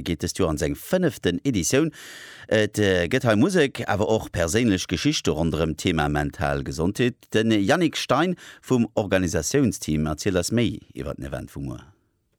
geet dëst Joer an seng fënneften Editioun. Et gëtt hei Musek, awer och perséinlech Geschichte ronderëm d'Thema mental Gesondheet. De Yannick Stein vum Organisatiounsteam erzielt eis méi iwwer den Event vu muer.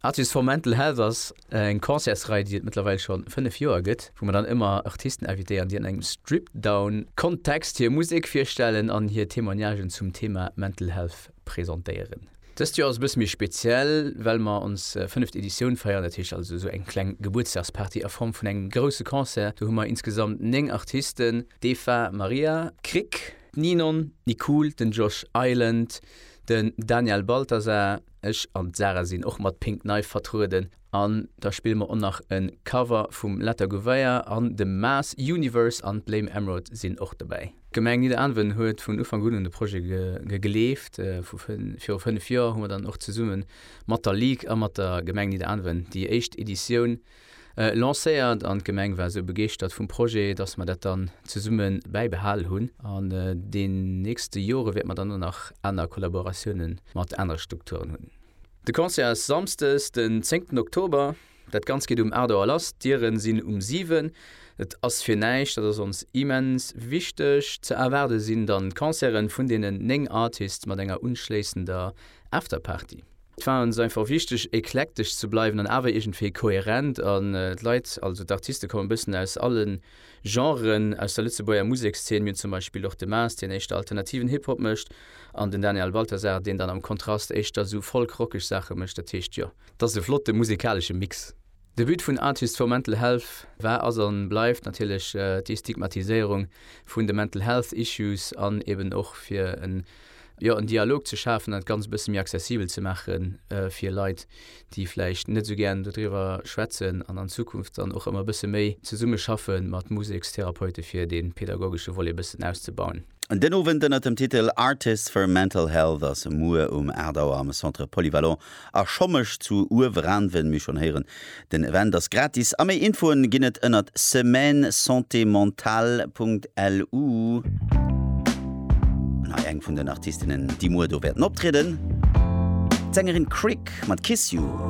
Artists for Mental Health ass eng Concertsrei, déi et mëttlerweil scho fënnef Joer gëtt, wou mer dann ëmmer Artisten invitéieren, déi an engem Strip-Down-Kontext hir Musek virstellen an hir Témoignagen zum Thema Mental Health presentéieren. Dëst Joer ass e bësse méi speziell, well mer ons fënneft Editioun feieren. Dat heescht also esou eng kleng Gebuertsdagsparty a Form vun engem grousse Concert. Do hu mer insgesamt 9 Artisten, d'Eva Maria Krick, d'Ninon Nicool, den Josh Island, den Daniel Balthasar, ech an d'Sarah sinn och mat Pink Knife vertrueden. An da spille mer och nach e Cover vum Letta Gouveia an dem Maas Universe an d'Blame Emerald sinn och dobäi. D'Gemeng Nidderaanwen huet vun Ufank un un de Projet gegleeft. Viru fënnef Joer hu mer dann och zesumme mat der Ligue a mat der Gemeng Nidderaanwen déi éischt Editioun lancéiert an d'Gemeng war esou begeeschtert vum Projet, dass mer dat dann zesumme bäibehal hunn. An den nächste Jore wäerte mer dann och nach aner Kollaboratiounen mat anere Strukturen hunn. De Concert ass Samsdes den 10 Oktober. Dat Ganzt geet um 8 Auer lass, d'Dieren sinn um 7. Et ass fir näischt, dat ass ons immens wichteg. Ze erwaarde sinn dann d'Concerten vun deenen 9 Artists mat enger unschléissender Afterparty. Et war ons einfach wichteg eklektesch ze bleiwen an awer iergendwéi koherent an d'Leit, also d'Artiste kommen e bëssen aus allen. Genren aus der Lëtzebuerger Musekszeen. Mir hunn zum Beispill och de Maas, deen éischter alternativen Hip-Hop mécht, an den Daniel Balthasar, deen dann am Kontrast éischter esou folk-rockeg Saache mécht. Dat heescht, jo. Dat ass e flotte musekalesche Mix. De But vun Artists for Mental Health war, ass an bleift natierlech d'Destigmatiséierung vun de Mental Health Issues an eben och fir en, jo, en Dialog ze schafen an dat Ganzt e bësse méi accessibel ze maache fir Leit, déi vläicht net esou gären dodriwwer schwätzen an an Zukunft dann och ëmmer e bësse méi zesumme schaffe mat Musekstherapeute fir dee pedagogesche Volet e bëssen auszebauen. Den Owend ënner dem Titel Artists for Mental Health ass muer um 8 Auer am Centre Polyvalent a Schommesch zu Ueweranven, mir schon héieren den Event ass gratis a méi Infoen ginn et ënnert semaine santé mentale Punkt LU. An hei eng vun den Artistinnen déi muer do wäerten optrieden, d'Sängerin Crick mat Kiss You.